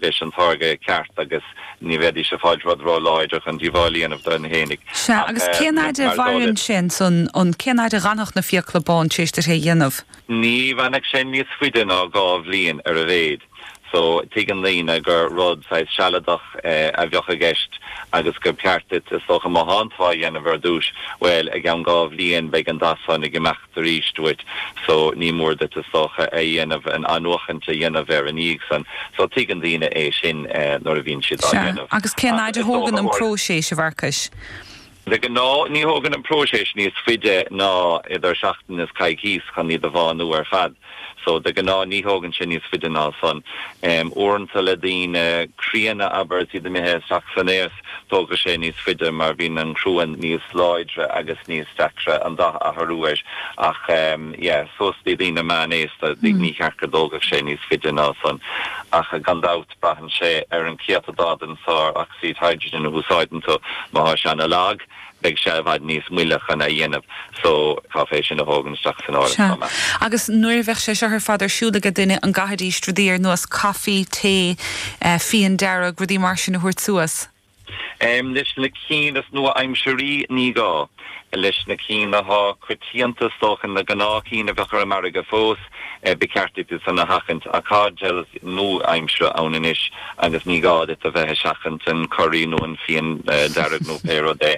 leis an táirge ceart agus ní bheidís ag fáilt rud ró láidir chun díobháil a dhéanamh dóibh fhéinig. Sea, agus cén fhaid a mhaireann sé ansan, an, cén fhaid a dh'fhanfadh na fiacla bán tar éis duit é a dhéanamh? Ní fhanfadh sé níos fuide ná dhá bhliain ar a mhéid. So, tuigeann daoine gur rud saghas sealadach a bheadh i gceist agus gur ceart duit, is dócha, má thánn tú á dhéanamh ar dtúis, bhuel, i gceann dhá bhliain beidh an dath san ag imeacht. arís duit so ní mór duit is dócha a dhéanamh, an athnuachaint a dhéanamh air ina dhiaidh san. So tuigeann daoine é sin nuair a bhíonn siad á dhéanamh. Sea. Agus cén fhaid a thógann an próiseas, a Mharcais? De ghnáth ní thógann an próiseas níos faide ná idir seachtain is coicís chun iad a bhánú ar fad. So, de ghnáth ní thógann sé níos faide ná san. Uaireanta le daoine críonna, abair, is iad imithe isteach san aos, tógfaidh sé níos faide mar bíonn an cruan níos láidre agus níos deacra an dath a athrú air ach yeah, suas dtí daoine meánaosta ní cheart go dtógfadh sé níos faide ná san ach gan dabht braitheann sé ar an céatadán den sár-ocsaíd hydrogen a úsáideann tú. Má thá sé an-lag, beidh sé i bhfad níos moille chun é a dhéanamh so caithfear é sin a thógaint isteach san áireamh chomh maith. Sea. Agus nuair a bheadh sé seo ar fad ar siúl aige duine an gcaithfidís rudaí ar nós coffee, tae, eh fíon dearg, rudaí mar sin a thabhairt suas? Em leis na cinn is nua aimsirí ní gá. Leis na cinn athá coitianta is dócha na gnáth cinn a bheadh ar an margadh fós. Ba cheart duit é san a sheachaint. Ach tá gel nua-aimsire ann anois agus ní gá duit a bheith ag seachaint an curaí nó an fíon dearg nó pé rud é.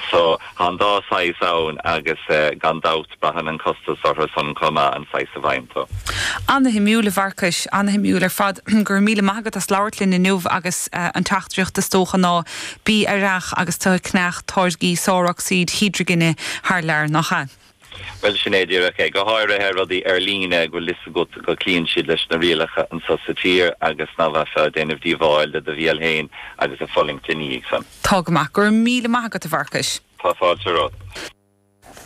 So, tá an dá shaghas ann agus gan dabht braitheann an costas orthu san chomh maith an saghas a bhfaigheann tú. Ana-shuimiúil, a Mharcais, ana-shuimiúil ar fad. Go raibh míle maith agat as labhairt linn inniu agus an teachtaireacht is dócha ná, bí aireach agus tú ag ceannach táirgí sárocsaíd hídrigine thar lear, nach ea? Bhuel, sin é díreach é. Go háirithe rudaí ar líne go bhfuil fhios agat go cloíonn siad leis na rialacha anseo sa tír agus nach mbeifeá ag déanamh díobháil do do bhéal féin agus ag fulaingt ina dhiaidh san. Tá go maith. Go raibh míle maith agat, a Mharcais. Tá fáilte romhat.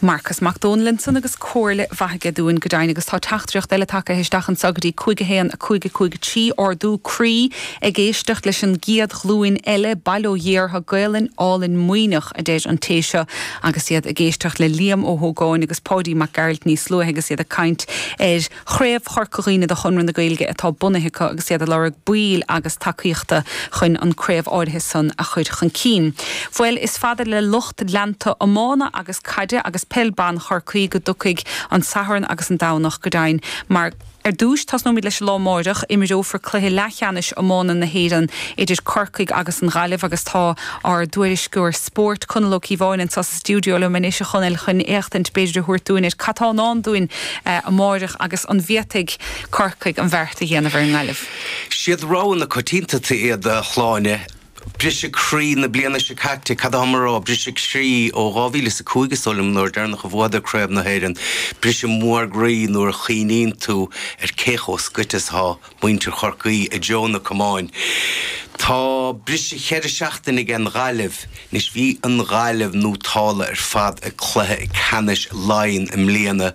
Marcas Mac Domhnaill ansan agus comhairle mhaith aige dúinn, go deimhin, agus tá teachtaireacht eile tagtha isteach anseo go dtí 511553, ardú croí ag éisteacht leis an gcéad ghlúin eile, bail ó Dhia orthu, Gaolainn álainn Muimhneach, a deir an té seo. Agus iad ag éisteacht le Liam Ó hÓgáin agus Páidí Mac Gearailt níos luaithe agus iad ag caint ar Chraobh Chorca Dhuibhne de Chonradh na Gaeilge atá bunaithe acu agus iad ag lorg baill agus tacaíochta chun an craobh áirithe san a chur chun cinn. Bhuel is fada le lucht leanta iomána agus caide agus peil ban Chorcaí go dtiocfaidh an Satharn agus an Domhnach go deimhin mar Ar dtúis, tosnóimid leis an lá amáireach. Imreofar cluiche leathcheannais iomána na hÉireann idir Corcaigh agus an Ghaillimh agus tá ár dtuairisceoir spóirt, Conall Ó Cíobháin, anseo sa stiúideo liom anois, a Chonaill, chun éachtaint b'fhéidir a thabhairt dúinn ar cad tá i ndán dúinn amáireach agus an bhféadfaidh Corcaigh an bheart a dhéanamh ar an nGaillimh? Siad rogha na coitianta iad, a Shláine. Briseadh croí na bliana seo caite. Cad atháim a rá? Briseadh croí ó 2005 is dóigh liom, an uair dheireanach a bhuadar Craobh na hÉireann. Briseadh mór croí nuair a chuimhníonn tú ar cé chomh scoite is atá muintir Chorcaí i dtreo na camáin. Tá briseadh cheithre seachtaine aige an Ghaillimh. Anois bhí an Ghaillimh nótálta ar fad ag cluiche ceannais Laighean i mbliana.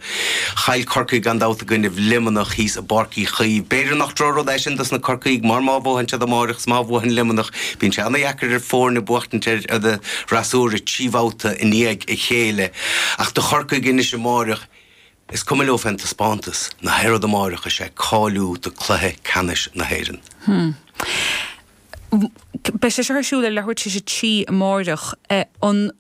Chaill Corcaigh gan dabht i gcoinnibh Luimneach thíos. bPáirc Uí Chaoimh. B'fhéidir nach drochrud é sin dos na Corcaígh mar má bhuadhann siad amáireach is má bhuadhann Luimneach bíonn sé ana-dheacair ar foirne buachtaint ar an fhreasúra trí bhabhta i ndiaidh a chéile ach do Chorcaigh anois amáireach is cuma leo fén dtaispeántas ná haon rud amáireach is é cáiliú do cluiche ceannais na hÉireann. Beidh sé seo ar siúl ar leathuair tar éis a trí amáireach. An.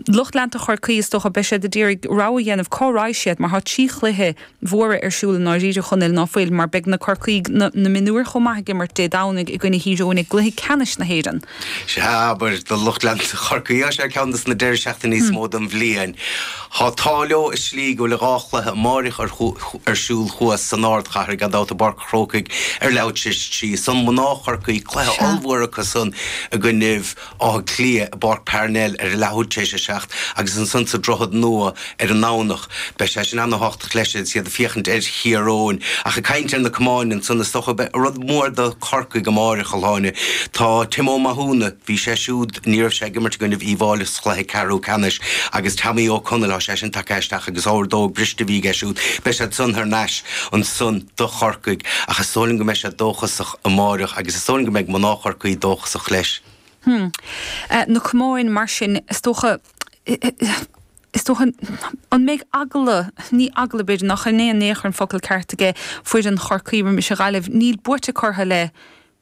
Lucht leanta Chorcaí, is dócha, beidh siad ag iarraidh rogha a dhéanamh cá raghaidh siad mar tá trí chluiche mhóra ar siúl i ndáiríre, a Chonaill, ná fuil, mar beidh na Corcaígh, na mionúir chomh maith, ag imirt Dé Domhnaigh i gcoinne Thír Eoghain i gcluiche ceannais na hÉireann. Sea, abair, do lucht leanta Chorcaí, tá sé ceann dos na deiridh seachtaine is mó den bhliain. Tá an t-ádh leo i slí go bhfuil dhá chluiche amáireach ar siúl thuas san ardchathair, gan dabht, i bPáirc an Chrócaigh ar leathuair tar éis a trí, ansan mná Chorcaí, cluiche ollmhór acusan i gcoinnibh Átha Cliath, i bPáirc Parnell ar an leathuair tar éis a seacht agus ansan sa Droichead Nua ar an nDomhnach. Beidh sé sin ana-thábhachtach leis agus iad ag féachaint ar Thír Eoghain. Ach ag caint ar na camáin ansan, is dócha, beidh rud mór do Chorcaigh amáireach, a Shláine. Tá Tim Ó Mathúna, bhí sé siúd, ní raibh sé ag imirt i gcoinnibh Uíbh Fhailí sa chluiche ceathrú ceannais, agus Tommy Ó Conaill, tá sé sin tagtha isteach agus órdóg briste a bhí aige siúd, beidh siad san thar n-ais ansan do Chorcaigh. Ach is dóigh liom go mbeidh siad dóchasach. amáireach agus is dóigh liom go mbeidh mná Chorcaí dóchasach leis. Hm. Na camáin, mar sin, is dócha, is dócha, an mbeidh eagla, ní eagla, b'fhéidir, nach in é in aon chor an focal ceart aige foireann Chorcaí roimis an Ghaillimh, níl buaite acu orthu le.